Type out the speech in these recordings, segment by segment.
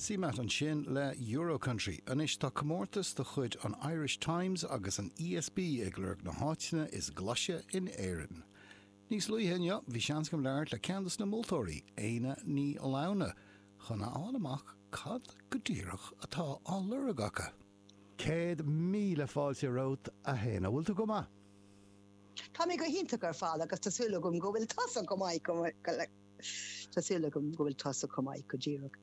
Sin CMAT ansin le Euro-Country. Anois tá comórtas de chuid an Irish Times agus an ESB ag lorg na háiteanna is glaise in Éirinn. Níos luaithe inniu bhí seans agam labhairt le ceann dos na moltóirí, Éanna Ní Lamhna, chun a fháil amach cad go díreach atá á lorg acu. Céad míle fáilte romhat, a Éanna. Bhfuil tú go maith? Tá mé go hiontach ar fad agus tá súil agam go bhfuil tusa go maith, go le. Tá súil agam go bhfuil tusa chomh maith, go díreach.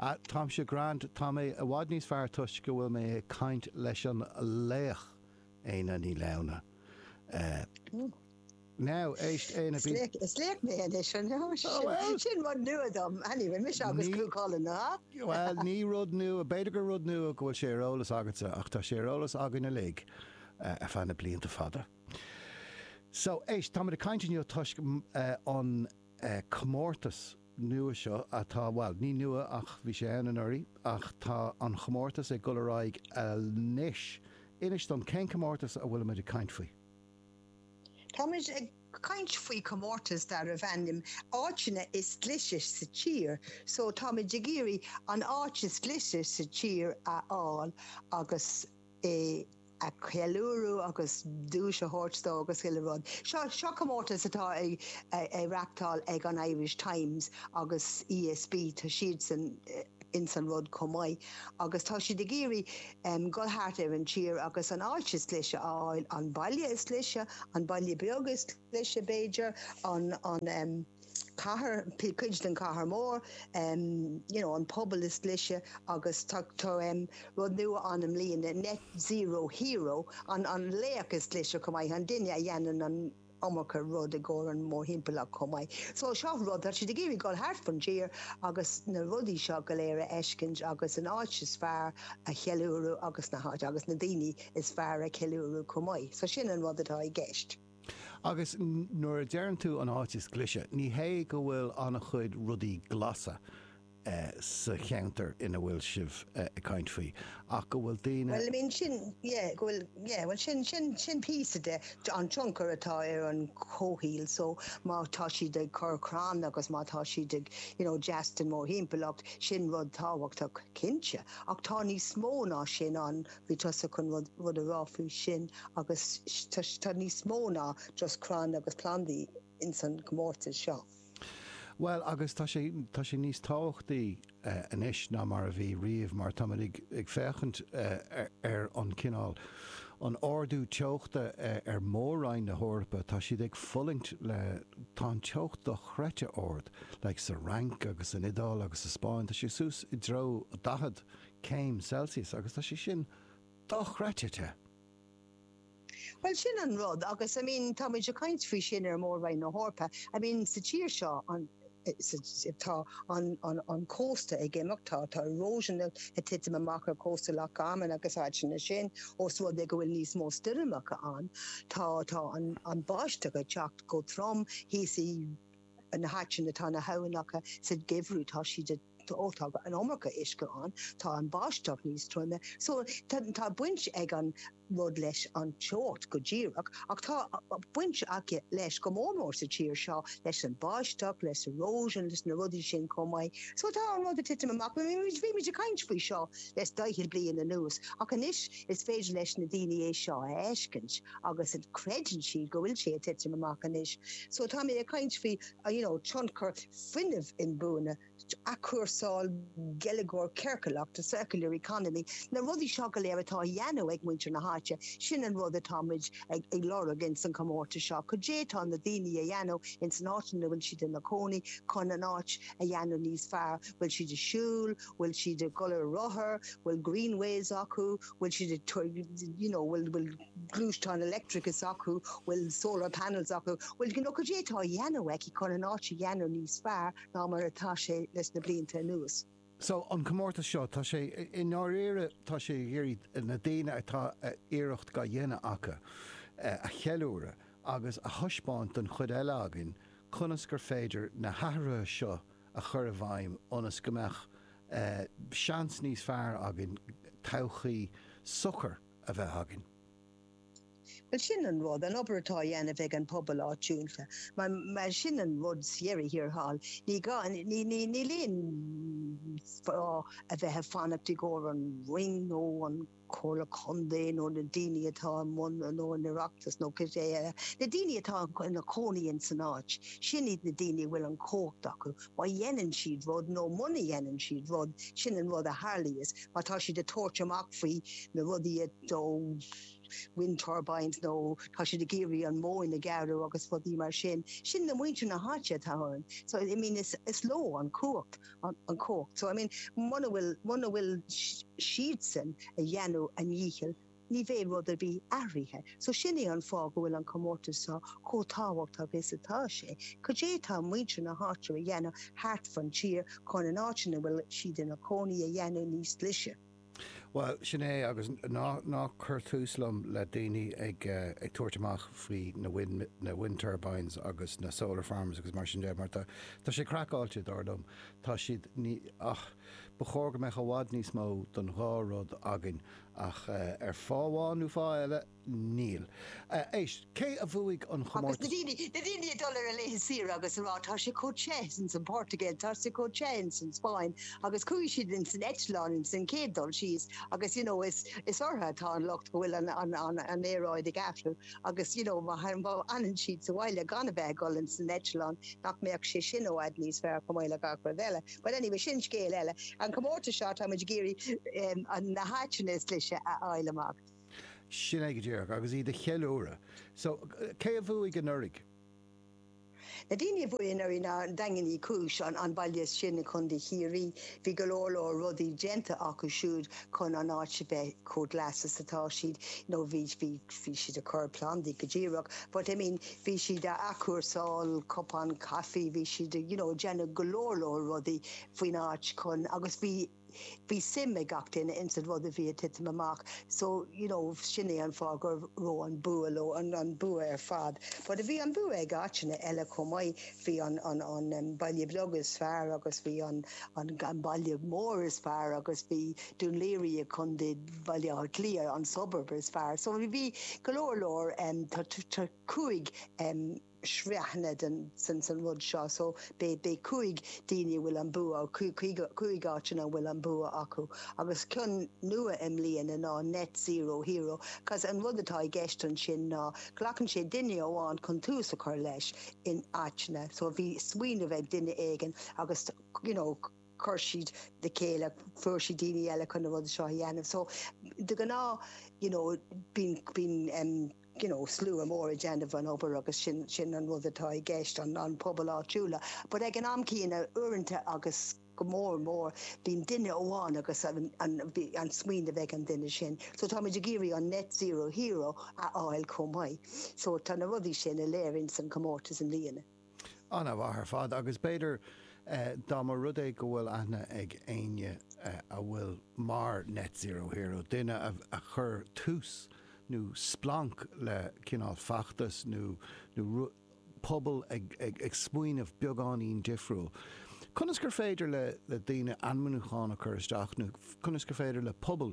Ah, táimse grand, tá mé i bhfad níos fearr toisc go bhfuil mé ag caint leis an laoch, Éanna Ní Lamhna. Now, éist, Éanna, bí. Is laoch mé anois, an ea? Sin rud nua dom. Anyway, mise agus Cú Chulainn, an ea? Bhuel, ní rud nua, b'fhéidir gur rud nua go bhfuil sé ar eolas agatsa, ach tá sé ar eolas againn uilig ar feadh na blianta fada. So, éist, táimid ag caint inniu toisc an comórtas nua seo atá, bhuel, ní nua ach bhí sé ann anuraidh ach tá an chomórtas ag dul ar aghaidh anois. Inis dom, cén comórtas a bhfuilimid ag caint faoi? Táimid ag caint faoi chomórtas darbh ainm 'Áiteanna is Glaise sa Tír'. So, táimid ag iarraidh an áit is glaise sa tír a fháil agus. é a cheiliúradh agus duais a thabhairt dó agus chuile rud. Seo seo comórtas atá á reachtáil ag an Irish Times agus ESB, tá siadsan ins an rud chomh maith agus tá siad ag iarraidh dhul thart ar an tír agus an áit is glaise a fháil, an baile is glaise, an baile beag is glaise b'fhéidir, an. cathair, cuid den chathair mór, you know an pobal is glaise agus tá tá rud nua ann i mbliana net zero hero an an laoch is glaise chomh maith an duine a dhéanann an iomarca rud i gcomhair an mórthimpeallacht chomh maith. So seo rud tá siad ag iarraidh dul thart fan tír agus na rudaí seo go léir a fheiscint agus an áit is fearr a cheiliúradh agus na háit agus na daoine is fearr a cheiliúradh chomh maith. So sin an rud atá i gceist. Agus nuair a deireann tú an áit is glaise, ní hé go bhfuil an-chuid rudaí glasa sa cheantar ina bhfuil sibh ag caint faoi, ach go bhfuil daoine. Bhuel, I mean, sin, yeah, go bhfuil, yeah, bhuel, sin, sin, sin píosa de, an tionchar atá ar an chomhshaol, so má tá siad ag cur crann agus má tá siad ag, you know, deas don mórthimpeallacht, sin rud tábhachtach, cinnte. Ach tá níos mó ná sin ann, Bhí tusa chun rud a rá faoi sin agus tá níos mó ná just crainn agus plandaí ins an gcomórtas seo. Bhuel agus tá sé, tá sé níos tábhachtaí anois ná mar a bhí riamh mar táimid ag féachaint ar an cineál, an ardú teochta ar Mhór-Roinn na hEorpa, tá siad ag fulaingt le, tá an teocht dochreidte ard like sa Fhrainc agus san Iodáil agus sa Spáinn, tá sé suas i dtreo 40 céim Celsius agus tá sé sin dochreidte te! Bhuel, sin an rud agus, I mean, tá muid ag caint faoi sin ar Mhór-Roinn na hEorpa. I mean, sa tír seo, an, tá an, an, an cósta ag imeacht, tá, tá erosion ag titim amach ar chósta Loch Garman agus áiteanna sin os rud é go bhfuil níos mó stoirmeacha ann. Tá, tá an, an bháisteach ag teacht go trom thíos i na háiteanna, tá na habhainneacha sa gheimhreadh, tá siad a. Tá an iomarca uisce ann, tá an bháisteach níos troime so tá baint ag an rud leis an teocht go díreach ach tá baint aici leis go mór mór sa tír seo leis an bháisteach, leis erosion, leis na rudaí sin chomh maith. So tá an rud ag titim amach. Bhí muid ag caint faoi seo le daichead bliain anuas ach anois is féidir leis na daoine é seo a fheiscint agus creideann siad go bhfuil sé ag titim amach anois. So tá mé ag caint faoi. you know tionchar fuinnimh inbuaine athchúrsáil geilleagar ciorcalach the circular economy na rudaí seo go léir atá a dhéanamh ag muintir na háite, sin an rud atá muid ag ag lorg in san comórtas seo, cad é atá na daoine a dhéanamh in san áit ina bhfuil siad ina cónaí chun an áit a dhéanamh níos fearr, bhfuil siad ag siúl, bhfuil siad ag dul ar rothair, bhfuil greenways acu, bhfuil siad ag you know bhfuil, bhfuil. gluaisteán leictreach acu, bhfuil solar panels acu, bhfuil you know cad é atá a dheanamh aici chun an áit a dheanamh níos fearr ná mar atá sé leis na blianta anuas. So an comórtas seo, tá sé, i ndáiríre, tá sé ag iarraidh na daoine atá iarracht ga dheanamh acu a cheiliúradh agus a thaispeáint don chuid eile againn conas gur féidir na hathruithe seo a chur i bhfeidhm ionas go mbeadh seans níos fearr againn todhchaí socair a bheith againn. Bhuel, sin an rud, an obair atá á dhéanamh ag an pobal áitiúil, mar sin an rud sa dheireadh thiar thall. Ní gá, níl aon fáth a bheith ag fanacht i gcomhair an Roinn nó an Chomhairle Contae nó na daoine atá i mbun, nó an tOireachtas nó cibé. Na daoine atá ina gcónaí in san áit, sin iad na daoine a bhfuil an chumhacht acu. Má dhéanann siad rud nó muna dhéanann siad rud, sin an rud a tharlaíos. Má tá siad ag tabhairt amach faoi na rudaí, nó wind turbines, nó tá siad ag iarraidh an mhóin a ghearradh agus rudaí mar sin, sin na muintir na háite atá ann. So, I mean, is leo an chumhacht, an chumhacht. So, I mean, muna bhfuil, muna bhfuil siadsan a dhéanamh a ndíchill, Ní bheidh rud ar bith athraithe. So sin é an fáth go bhfuil an comórtas seo chomh tábhachtach is atá sé. Cad é atá muintir na háite a dhéanamh thart fan tír chun an áit ina bhfuil siad ina gcónaí a dhéanamh níos glaise? Bhuel, sin é agus ná cuir tús liom le daoine ag tabhairt amach faoi na wind turbines agus na solar farms agus mar sin de mar tá sé craiceáilte, dar liom. Tá siad, ní, ach ba chóir go mbeadh i bhfad níos mó don dhá rud againn Ach ar fáth amháin nó fáth eile, níl. Éist, cé a bhuaigh an chomórtas? Agus na daoine, na daoine ag dul ar a laethe saoire agus a rá, tá sé chomh te ins an Portugal, tá sé chomh te ins an Spáinn, agus chuaigh siad ins an eitleán ins an chéad dul síos agus you know is, is orthu atá an locht go bhfuil an, an, an, an aeráid ag athrú agus you know má fhanann siad sa bhaile gan a bheith ag dul ins an eitleán nach mbeadh sé sin i bhfad níos fearr chomh maith le gach rud eile. Bhuel anyway, sin scéal eile. An comórtas seo, táimid ag iarraidh na háiteanna is glaise a fháil amach. Sin é go díreach, agus iad a cheiliúradh. So, cé a bhuaigh anuraidh? Na daoine a bhuaigh anuraidh ná Daingean Uí Chúis, an baile sin i gContae Chiarraí. Bhí go leor leor rudaí déanta acu siúd chun an áit a bheith chomh glas is atá siad. You know, bhí siad ag cur plandaí go díreach, but I mean, Bhí siad ag athchúrsáil cupán caife, bhí siad a' you know déanamh go leor leor rudaí faoin áit chun agus bhí, bhí suim ag gach duine ins an rud a bhí a' titim amach so you know sin é an fáth go raibh an bua leo, an, an bua ar fad. But bhí an bua ag áiteanna eile chomh maith, bhí an, an, an, em, baile beag is fearr agus bhí an, an, an baile mór is fearr agus bhí, Dún Laoghaire i gContae Bhaile Átha Cliath an 'suburb' is fearr. So bhí go leor leor, tá cúig shraithanna san rud seo, so beidh cúig daoine a bhfuil an bua, cúig áiteanna a bhfuil an bua acu. Agus ceann nua i mbliana ná 'Net Zero Hero' cause an rud atá i gceist ansin ná glacann sé duine amháin chun tús a chur leis in áiteanna, so bhí smaoineamh ag duine éigin agus, you know, chuir siad le chéile, fuair siad daoine eile chun na rudaí seo a dhéanamh. So de ghnáth you know bíonn bíonn em you know slua mór ag déanamh an obair agus sin sin an rud atá i gceist an an pobal áitiúla. But ag an am céanna uaireanta agus go mór mór bíonn duine amháin agus an an bhí an smaoineamh ag an duine sin. So táimid ag iarraidh an net zero hero a fháil chomh maith. So tá na rudaí sin uilig ann sa comórtas i mbliana. An-mhaith ar fad, agus b'fhéidir dá mba rud é go bhfuil aithne ag éinne a bhfuil mar Net Zero Hero, duine a chur tús nó splanc le cineál feachtas nó rud, pobal ag smaoineamh beagáinín difriúil, conas gur féidir le daoine ainmniúchán a chur isteach nó conas gur féidir le pobal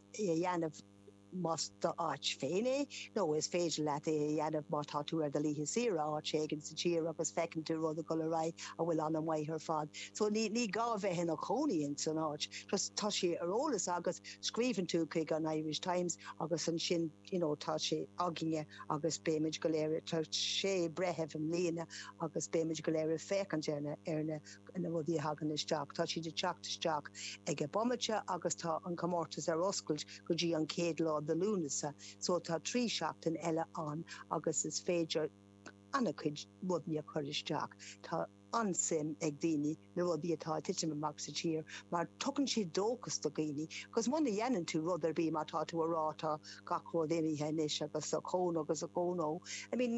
é a dhéanamh más d'áit féin é, nó is féidir leat é a dhéanamh má tá tú ar do laethe saoire áit éigin sa tír agus feiceann tú rud ag dul ar aghaidh a bhfuil an-mhaith ar fad. So ní ní gá bheith i do chónaí ins an áit, just tá sé ar eolas agat, scríobhann tú chuig an Irish Times agus ansin you know tá sé againne agus beimid go léir, tá sé bhreitheamh i mbliana agus beimid go léir ag féachaint ar na ar na na rudaí a thagann isteach, tá siad ag teacht isteach ag an bomaite agus tá an comórtas ar oscailt go dtí an chéad lá do Lúnasa so tá trí seachtaine eile ann agus is féidir ana-chuid rudaí a chur isteach. Tá an-suim ag daoine na rudaí atá ag titim amach sa tír mar tugann siad dóchas do dhaoine agus muna dhéanann tú rud ar bith má tá tú a rá tá gach rud imithe anois agus ochón ó agus ochón ó I mean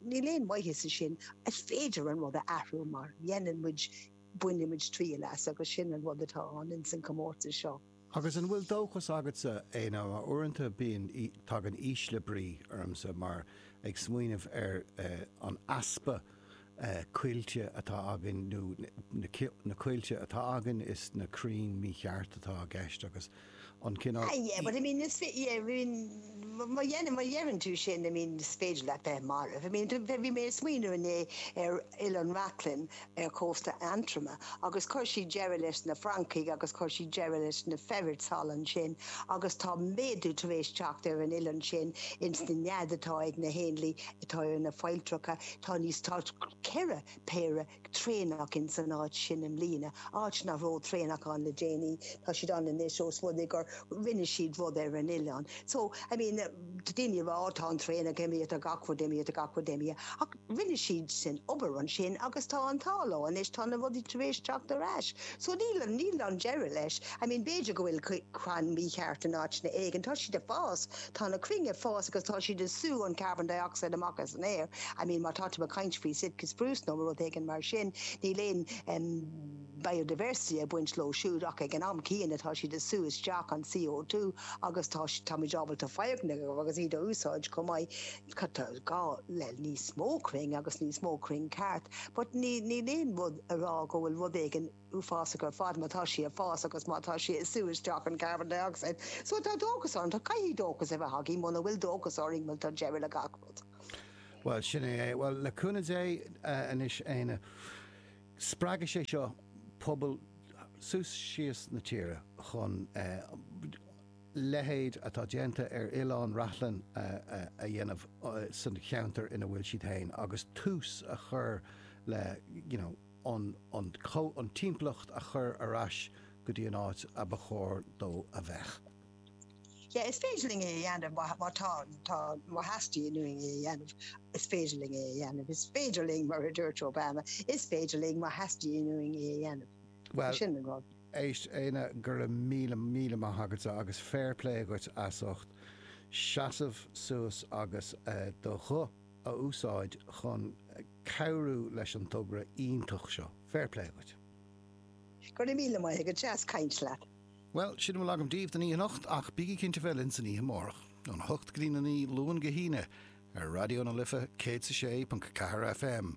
Níl aon mhaitheas i sin. Is féidir an rud a athrú má dhéanann muid, bainimid triail as agus sin an rud atá ann ins an comórtas seo. Agus an bhfuil dóchas agatsa é nó uaireanta bíonn, tagann ísle brí ormsa mar ag smaoineamh ar an easpa coillte atá againn nó na coillte atá againn is na crainn mícheart atá i gceist agus an cineál. Ah yeah, but I mean is féidir, yeah, I mean má dhein, má dheireann tú sin, I mean is féidir leat bheith marbh. I mean, bhí, bhí mé ag smaoineamh inné ar Oileán Reachlainn ar chósta Aontroma agus chuir siad deireadh leis na francaigh agus chuir siad deireadh leis na ferrets thall ansin agus tá méadú tar éis teacht ar an oileán sin ins na néad atá ag na héanlaith atá ar na failltreacha, tá níos, tá ceithre péire traenach ins an áit sin i mbliana, áit nach raibh traenach ann le déanaí, tá siad ann anois ós rud é gur rinne siad rud ar an oileán. So, I mean, tá daoine ag rá, oh, tá an traenach imithe tá gach rud imithe gach rud imithe, ach rinne siad sin obair ansin agus tá an t-ádh leo anois, tá na rudaí tar éis teacht ar ais. So, níl, níl an deireadh leis. I mean, b'fhéidir go bhfuil crann mícheart in áiteanna éigin, tá siad ag fás, Tá na crainn ag fás agus tá siad ag sú an carbon dioxide amach as an aer. I mean, má tá tú ag caint faoi Sitka spruce nó rud éigin mar sin, níl aon, em, biodiversity ag baint leo siúd ach ag an am céanna tá siad ag sú isteach an CO2 agus tá, táimid ábalta foirgnimh agus iad a úsáid chomh maith. Tá, tá gá le níos mó crainn agus níos mó crainn ceart but ní, níl aon rud ag rá go bhfuil rud éigin, uafásach ar fad má tá sí ag fás agus má tá sí ag sú isteach an carbon dioxide so tá dóchas orainn, tá caithfidh dóchas a bheith againn muna bhfuil dóchas orainn bhuel tá deireadh le gach rud. Bhuel, sin é é. Bhuel, le cúnamh Dé, anois Éanna, spreagfaidh sé seo pobal suas síos na tíre chun leithéid atá déanta ar Oileán Reachlainn a dhéanamh sa cheantar ina bhfuil siad féin agus tús a chur le, you know, chun an timpeallacht a chur ar ais go dtí an áit a ba chóir dó a bheith. Sea, is féidir linn é a dhéanamh, má tá, tá, má theastaíonn uainn é a dhéanamh, is féidir linn é a dhéanamh. Is féidir linn, mar a dúirt Obama, is féidir linn má theastaíonn uainn é a dhéanamh. Bhuel. Sin an rud. Éist, Éanna, go raibh míle, míle maith agatsa agus fair play dhuit as ucht seasamh suas agus do ghuth, a úsáid chun cabhrú leis an togra iontach seo. Fair play dhuit. Go raibh míle maith agat, deas caint leat. Bhuel, sin a bhfuil agam daoibh don oíche anocht, ach bígí cinnte bheith linn san oíche amárach, ón 8 go dtí'n 9, Luan go hAoine, ar Raidió na Life 106.4 FM.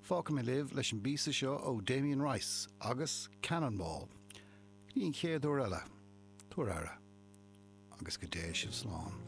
Fágfaidh mé sibh leis an bpíosa seo ó Damien Rice agus Cannonball. Go dtí an chéad uair eile, tugaigí aire, agus go dté sibh slán.